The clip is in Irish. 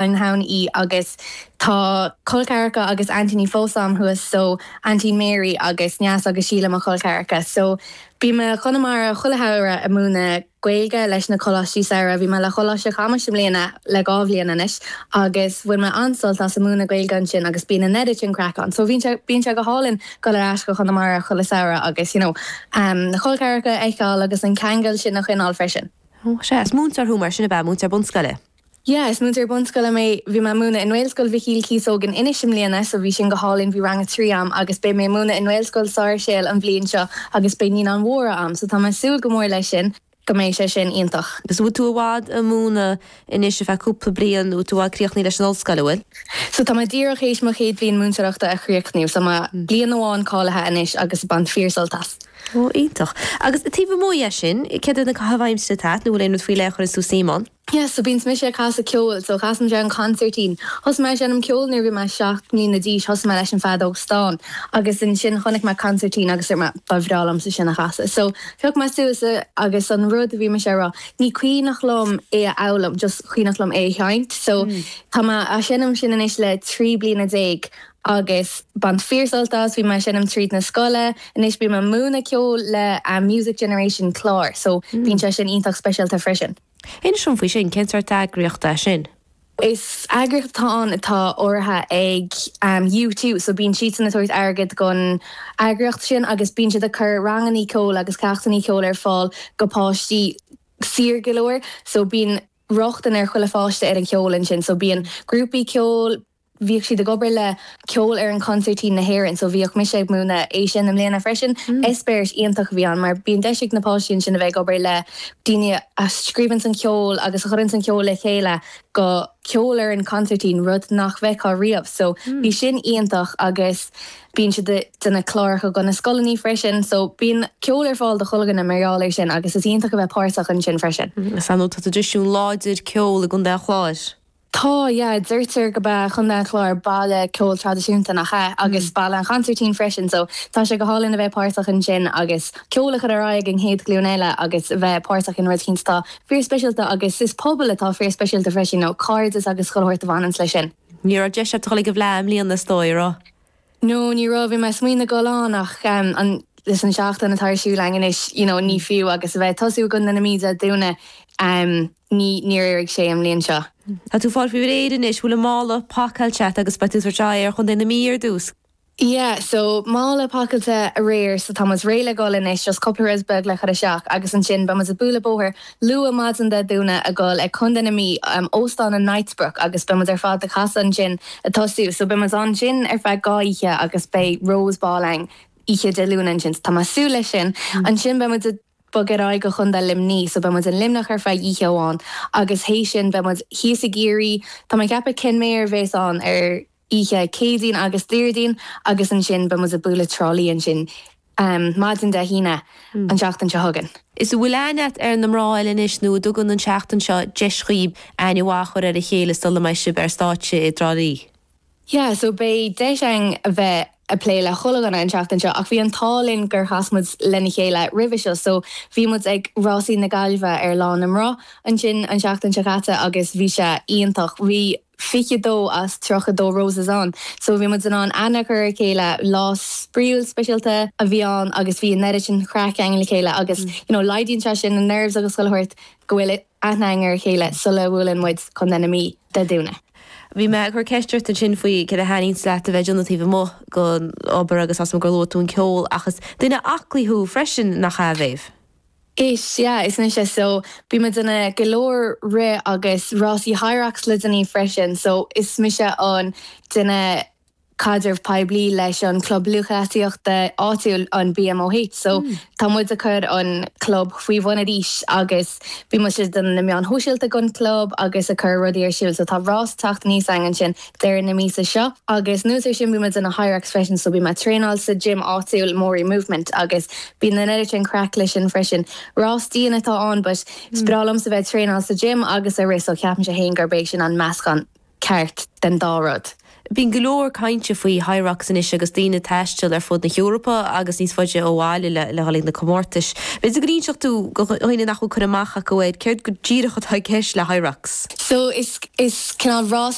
an hAon í agus tá col ceathracha agus aintíní fós a'm thuas so Auntie Mary agus Neasa agus Síle mo chol ceathracha so bím i gConamara chuile shamhradh a' múineadh Gaeilge leis na coláistí samhraidh bhí mé le Coláiste Chamuis i mbliana le dhá bhliain anois agus bhain mé an-sult as a' múineadh Gaeilge ansin agus bíonn an oiread craic ann so bhíonn sé bíonn sé go hálainn goil ar ais go Chonamara chuile samhradh agus you know na col ceathracha a fheiceáil agus an ceangal sin a choinneáil freisin. Ó, sea, is múinteoir thú mar sin ab ea, múinteoir bunscoile? Yeah, is múinteoir bunscoile mé. Bhí mé ag múineadh i nGaelscoil Mhichíl Cíosóg in Inis i mbliana so bhí sin go hálainn. Bhí Rang 3 a'm agus beidh mé ag múineadh i nGaelscoil Sáirséal an bhliain seo agus beidh Naíonáin Mhóra a'm so tá mé ag súil go mór leis sin, go mbeidh sé sin iontach. So bhfuil tú i bhfad a' múineadh anois ar feadh cúpla bliain, bhfuil tú críochnaithe leis an ollscoil, a' bhfuil? So tá mé díreach théis mo chéad bhliain múinteoireachta a chríochnú so mé bliain amháin cáilithe anois agus bain fíor sult as. Oh, iontach. Agus taobh amuigh dhe sin, céard iad na caitheamh aimsire atá a't nó bhfuil aon rud faoi leith a chuireanns tú suim ann? Yes, so bíonn mise ag casadh ceoil, so casann mise an consairtín. Thosaigh mé ag seinm ceoil nuair a bhí mé seacht mbliana d'aois, thosaigh mé leis an feadóg stáin agus ansin chonaic mé consairtín agus dúirt mé ba bhreá liomsa sin a chasadh. So phioc mé suas é agus an rud a bhí mise a rá, ní cuimhneach liom é a fhoghlaim, just cuimhneach liom é a sheinnt. So tá mé á seinm sin anois le trí bliana déag agus bain fíor sult as, bhí mé ag seinm tríd na scoile, anois bím ag múineadh ceoil le Music Generation Clare, so bíonn sé sin iontach speisialta freisin. Inis dom faoi sin, cén sórt eagraíocht é sin? Is eagraíocht atá ann atá urraithe ag U2 so bíonn siadsan ag tabhairt airgead gon eagraíocht sin agus bíonn siad ag cur rangannaí ceoil agus ceachtannaí ceoil ar fáil go páistí saor go leor so bíonn rochtain ar chuile pháiste ar an cheol ansin so bíonn grúpaí ceoil bhíodh siad ag obair le Ceolfhoireann Consairtín na hÉireann, so bhíodh mise ag múineadh é sin i mbliana freisin. Eispéiris iontach a bhí ann mar bíonn deis ag na páistí ansin a bheith ag obair le daoine a scríobhanns an ceol agus a chuireanns an ceol le chéile go ceolfhoireann consairtín, rud nach bhfeictheá riamh. So bhí sin iontach agus bíonn siad a déanamh cláracha go na scoileannaí freisin. So bíonn ceol ar fáil do chuile dhuine mar gheall ar sin agus is iontach a bheith páirteach ansin freisin. Is ar ndóigh tá traidisiún láidir ceol i gContae an Chláir. Tá, yeah. Deirtear gurb é Contae an Chláir baile ceoil traidisiúnta, nach ea? Agus baile an chonsairtín freisin, so tá sé go hálainn a bheith páirteach ansin agus ceol a chur ar aghaidh ag an chéad ghlúin eile agus bheith páirteach in rud eicínt atá fíorspeisialta agus is pobal atá fíorspeisialta freisin, you know, cairdeas agus chuile shórt a bhaineanns leis sin. Ní raibh deis agat dul ag an bhFleadh i mbliana is dóigh, a raibh? no ní raibh bhí mé ag smaoineamh goil ann ach an leis an seachtain atá ar siúl againn anois you know ní fiú agus a bheith ag tosú i gContae na Mí Dé Domhnaigh ní níor éirigh sé an bhliain seo. Tá tú fáil faoi réir anois bhfuil an mála pacáilte agat agus beidh tú ag teacht ar Chontae na Mí ar dtús? Yeah so mála pacáilte aréir so tá muid réidh le dhul anois just cúpla rud beag le cur isteach agus ansin beidh muid ag bualadh bóthair Luath maidin Dé Domhnaigh a dhul ag Contae na Mí, Óstán an Knightsbrook agus beidh muid ar fad ag casadh ansin a tosú. So beidh muid ansin ar feadh dhá oíche agus beidh Rose Ball ann oíche Dé Luain ansin. So tá mé a' súil leis sin. Ansin beidh muid a' bogadh ar aghaidh go Contae Luimnigh so beidh muid i Luimneach ar feadh oíche amháin agus th'éis sin beidh muid thíos i gCiarraí, tá mé a' ceapadh Kenmare a bhéas ann ar oíche Chéadaoin agus Déardaoin agus ansin beidh muid a' bualadh Trá Lí ansin maidin Dé hAoine an tseachtain seo chugainn. Is a bhfuil aithne a't ar na mná eile anois nó an dtugann an tseachtain seo deis dhaoib aithne mhaith a chur ar a chéile sula mbeidh sib ar stáitse i dTrá Lí. Yeah so beidh deis againn a bheith a plé le chuile dhuine an tseachtain seo ach bhí an t-ádh linn gur chas muid lena chéile roimhe seo so bhí muid ag Rásaí na Gaillimhe ar Lá na mBan ansin an tseachtain seo caite agus bhí sé iontach bhí 22 as 32 roses ann so bhí muid in ann aithne a chur ar a chéile. Lá spraíúil speisialta a bhí ann agus bhí an oiread sin craic againn le chéile agus you know laghdaíonn sé sin na nerves agus chuile shórt go bhfuil aithne againn ar a chéile sula mbuaileann muid contae na Mí Dé Domhnaigh. Bhí mé ag cur ceist ort ansin faoi céard a thaitníonns leat a bheith ag déanamh taobh amuigh den obair agus, tá a fhios agam gur luaigh tú an ceol ach is duine aclaí thú freisin nach ea, Mhéabh? Is ea, is mise. So, bím ag déanamh go leor rith agus rásaí Hyrox le déanaí freisin. So, is mise an duine caidreamh poiblí leis an club lúthchleasaíochta áitiúil, an BMOH. So, tá muid ag cur an club faoi bhun anois agus bímse ag déanamh na meáin shóisialta don club agus ag cur rudaí ar siúl. So, tá rás ag teacht aníos againn ansin deireadh na míosa seo. Agus anuas ar sin, bím ag déanamh Hyrox freisin, so bíonn mé ag traenáil sa gym áitiúil, Morey Movement, agus bíonn an oiread sin craic leis sin freisin. Rás dian atá ann, but is breá liomsa a bheith ag traenáil sa gym agus ag rith, so ceapaimse féin gurb é sin an meascán ceart den dá rud. Bíonn go leor cainte faoi Hyrox anois agus daoine ag taisteal ar fud na hEorpa agus níos faide ó bhaile le dhul ag na comórtais. B'fhéidir go n-inseodh tú do dhaoine nach bhfuil cur amach acu air céard go díreach atá i gceist le Hyrox? So is cineál rás.